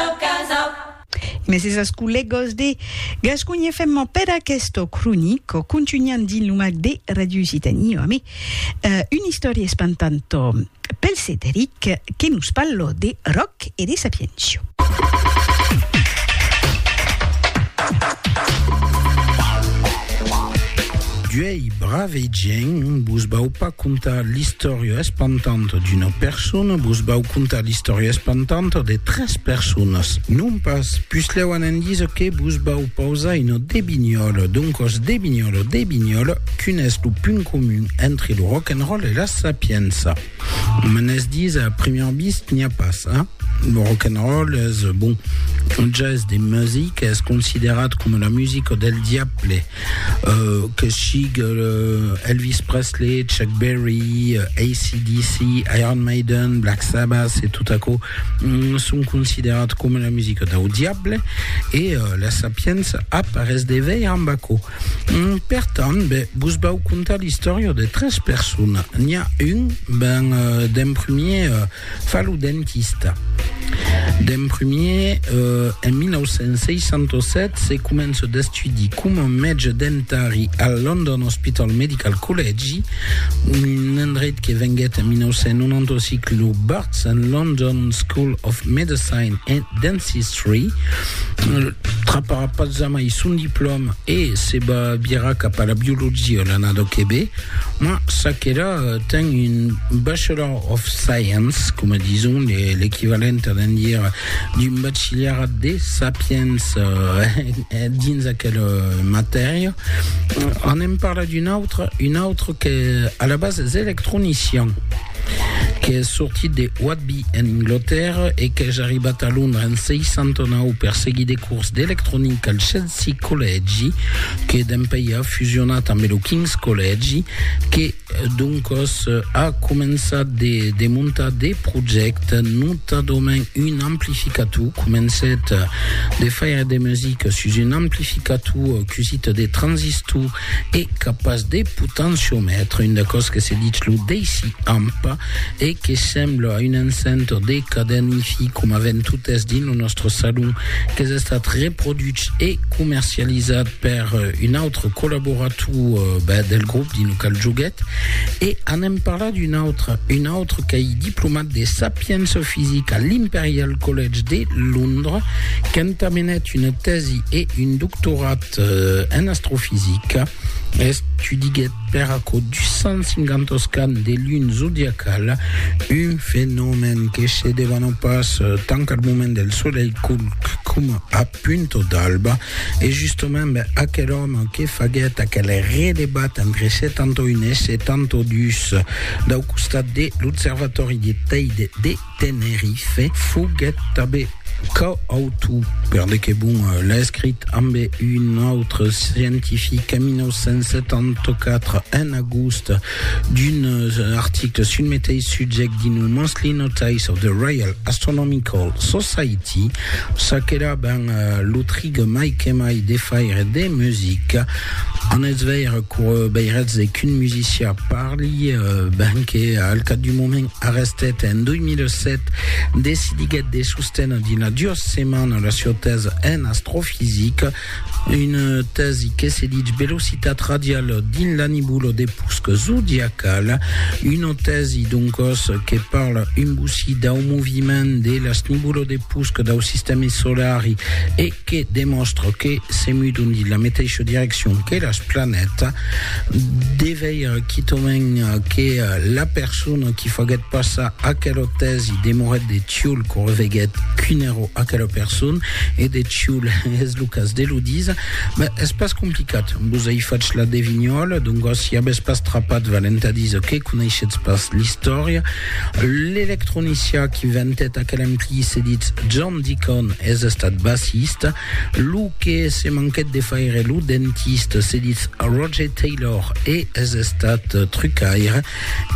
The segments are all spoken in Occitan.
Tòc casa. Mes esas collegos de Gasconha FM per aquesto cronico contunhan dins lo mac de Radio Occitanie o amé una istòria espantanto pel Cederic que nos parlo de Roc e de Sapiencio. Ei brave gent, vos vau pas contar l'istòria espantanta d'una persona, vos vau contar l'istòria espantanta de tres personas. Non pas, puslèu an endisa que vos vau pausar una debinhòla, doncòs debinhòla, debinhòla, quin es lo punt comun entre lo rock and roll e la sapiença? Menes dits a primièr vist n'i a pas, a? Lo rock'n'roll es, bon, un ges de music, es considerat coma la musica del diable, que sigue Elvis Presley, Chuck Berry, AC/DC, Iron Maiden, Black Sabbath e tot aquò, son considerat coma la musica dau diable e la Sapienza a pas res de veir amb aquò. Per tant, be, vos vau contar l'istòria de tres persona. N'i a un, ben, d'en premier, fa lo dentista. D'en premier, en 1967, se comença d'estudi coma mètge dentari al London Hospital Medical Collegi, un endreit que venguèt en 1995 lo Barts and London School of Medicine and Dentistry. Free. Traparà pas jamai son diplòma e se va virar cap a la biologia l'anada que ve, ma Sakera ten un Bachelor of Science, coma dison, l'equivalent a d'en dire d'un bachillerat de sapiens eh, dins aquela matèria. Anem parlar d'un autre, un autre que a la base es electronician. qu'es sortit de Whitby en Anglatèrra e qu'es arribat a Londra en 69 per seguir de cors d'electronica al Chelsea Collègi que dempèi a fusionat ambe lo King's Collègi que doncòs a començat de de montar de projècte notadament un amplificator comencèt de faire de musica sus un amplificator cusit de transistor e capaç de potenciomètre, un d'aquò's que se ditz lo deci-amp e que sembla a un encentor de cadèn Hi-Fi coma ven totes dins lo nòstre salon, qu'es estat reproduch e comercializat per un autre collaborator del grop dins lo qual joguèt e anem parlar d'un autre, un autre qu'ei diplomat de sapiença fisica a l'Imperial College de Londres, qu'entamenèt una tèsi e un doctorat En astrofisica, estudiguèt per aquò 250 oscans de luna zodiacala, un fenomèn que se devana pas tant al moment del solelh culc coma a punta d'alba. E justament aquel òme que faguèt aquel redebat entre 71 e 72 dau costat de l'observatòri de Teide de Tenerife foguèt tanben coautor, per de que bon l'escrit, ambe un autre scientific en 1974, en agost, d'un article sul meteis subject dins lo Monthly Notice of the Royal Astronomical Society, ça qu'èra ben lo trig mai que mai de faire de musica. En eth veire cour beiratz qu'un musician parli, ben que al cap d'un moment, Arrestet en 2007, decidiguèt de sostener dina duas setmanas la sieu tèsa en astrofisica, una tèsi que se ditz velocitat radiala dins la nibula de pusc zodiacala, una tèsi doncas que parla un bocí dau moviment de las nibulas de pusc dau sistèmi solari e que demòstra que se mudon dins la meteisha direccion que las planètas, de veire quitament que la persona qui faguèt passar aquela tèsi demorèt de Tioul quand reveguèt quin èra aquela persona, e de Tioul es lo cas de lo díser, ben, es pas complicat, vos ai fach la devinhòla, doncas si avètz pas trapat val entà díser que coneishetz pas l'istòria, l'electronicien qui ventèt aquel ampli se ditz John. Dicon es estat bassista, lo que se manquèt de faire lo dentista, se ditz Roger Taylor e es estat trucaire,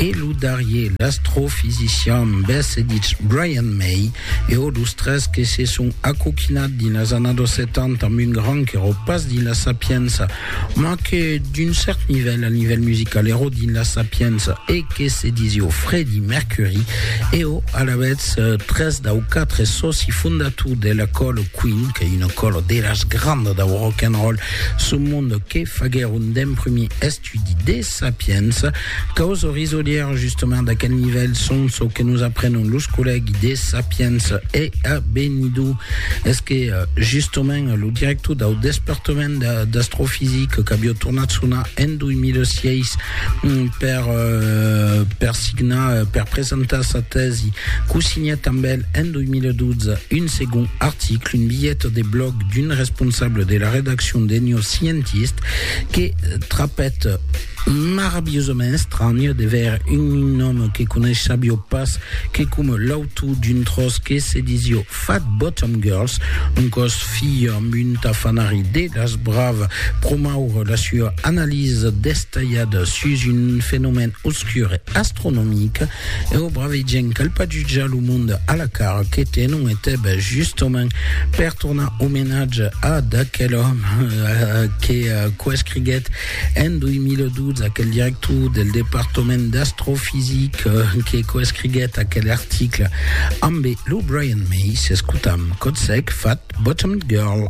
e lo darrier l'astrofisician bes se ditz Brian May, eau los tres que se son acoquinat dins las annados 70 amb un gran qu'èro pas dins la sapiença, Mas que d'un cèrt nivèl, al nivèl musical, ero dins la sapiença e que se disió Fredi Mercuri, eo alavetz tres dau quatre sòci fondator de la còlo Queen, qu'ei una còlo de las grandas dau rock and roll sul monde que faguèron d'emprumir estudi de sapiença. Caus o risolièr justement d'aquel nivèl son çò que nos aprenon los collègui de Sapiens e a Benidou es que justement lo director dau despartament d'astrofisic qu'avió tornat sonar en 2006 per per signar per presentar sa tèsi qu'o signèt amb el en 2012 un segond article un bilhet de blòg d'un responsable de la redaccion de New Scientist que trapèt Maravilhosament estranh de ver un òme que coneissavió pas, que coma l'autor d'un tròç que se disió Fat Bottom Girls, un còs filh amb un tafanari de las bravas, promoure la sua analisa destalhada sus un fenomèn obscur e astronomic, e o brave gent qu'alpaduja lo monde a la cara que tenon e teb justament per tornar omenatge a d'aquel òme que coescriguèt En 2012, aquel director del departament d'astrofisica que coescriguèt aquel article ambe lo Brian May, s'escotam Kotsek fat Bottomed Girl.